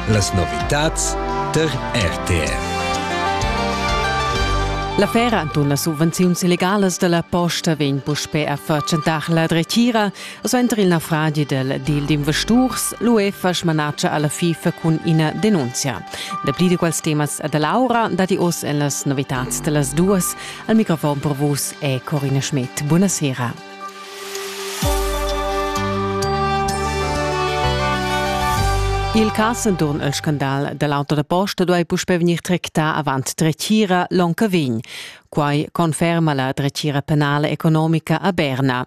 Las novitads tar RTR. La fera antun las subvenziuns illegalas dalla posta vegn puspe a fatschentar la dretgira, suenter il naufragi del deal d'investurs, l'UEFA smanatscha alla FIFA cun ina denunzia. Dapli di quels temas da Laura dati oss en las novitats dellas duas. Al microfon per vus è Corina Schmidt. Buonasera. Il cas enturn il scandal dall'auto da posta duei puspei vegnir tractà avant dretgira l'onca vegn. Quai conferma la dretgira penala economica a Berna.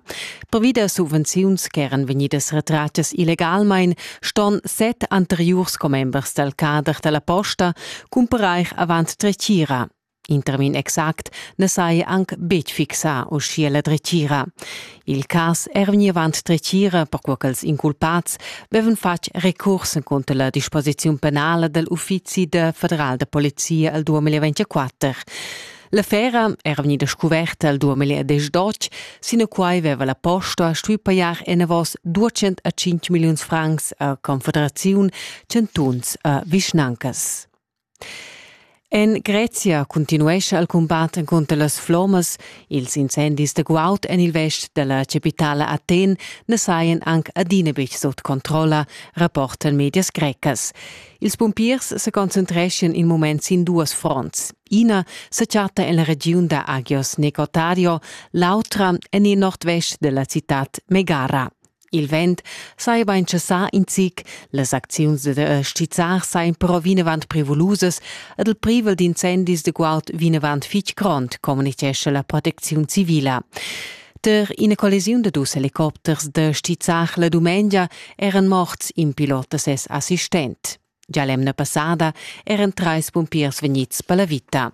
Previda subvenziuns che eran vegnidas retrattas illegalmain ston set anteriurs commembers dal cader dalla posta cumparair avant dretgira. In termin exact na sai anc betg fixar uschia la dretgira. Il cas è vegnì avant dretgira, perquai ch'els inculpads avevan fatg recurs cunter la disposiziun penala dal uffizi da federal da polizia al 2024. L'affera era vegnida scuverta il 2012, sinaquai aveva la posta stuì pajar enavos 205 milliuns francs a confederaziun, chantuns e vischnancas. En Grezia cuntinuescha il cumbat encunter las flommas. Ils incendis da guaud en il vest dalla capitala Athen na sajan anc adina betg sut controlla, rapportan medias grecas. Ils pumpiers sa concentreschan in mument sin duas fronts. Ina sa chatta en la regiun da Agios Necotario, l'autra en il nord-vest della citad Megara. Il vent saiva intschessà in zic, las acziuns da stizzar sajan però vinavant prevulusas ed il privel d'incendis de guaud vinavant fich grond, communitgescha la protecziun civila. Ter ina collisiun da dus helicopters da stizzar la dumengia eran morts in pilot da ses assistent. Già l'emna passada eran trais pumpiers vegnids per la vita.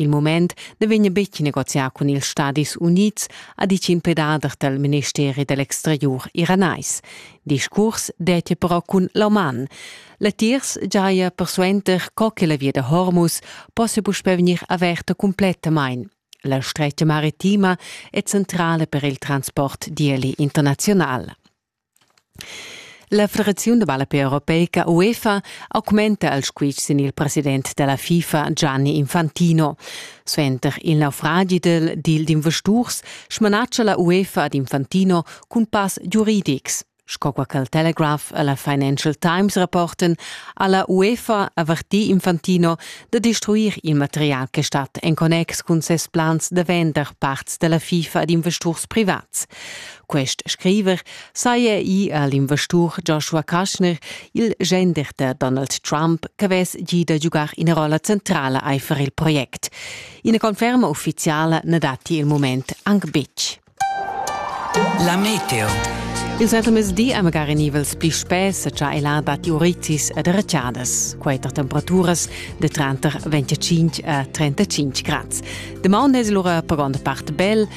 Il mument na vegn betg negozià cun ils Stadis Unids, ha ditg in pedader dal ministeri da l'exteriur iranais. Discurs dettia però cun l'Oman. Latiers giaja persuenter co che la via da Hormuz possa puspè vegnir averta cumplettamain. La stretga maritima è centrala per il transport d'ieli internazional. La federaziun da ballape europeica UEFA augmenta il squitsch sin il president dalla FIFA Gianni Infantino. Suenter il naufragi dil d'investurs smanatscha la UEFA ad Infantino cun pass giuridics. Sco qua il Telegraph e la Financial Times rapporten, ha la UEFA avertì Infantino da destruir il material che stat en connex cun ses plans da vender parts della FIFA ad investurs privats. Quest scriver saja ì a l'investur Joshua Kaschner, il genderter Donald Trump, ch'avess gì da giugar ina rolla centrala aifer il project. Ina conferma uffiziala na datti il mument anc betg. La meteo. Il settlemesdi è magari nivels pli spess, cha el ha datti uritis ed retschadas. Quater temperaturas de tranter 25 a 35 grads. De maun es lura per gronda part bel,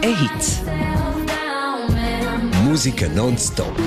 e hits. Musica non stop.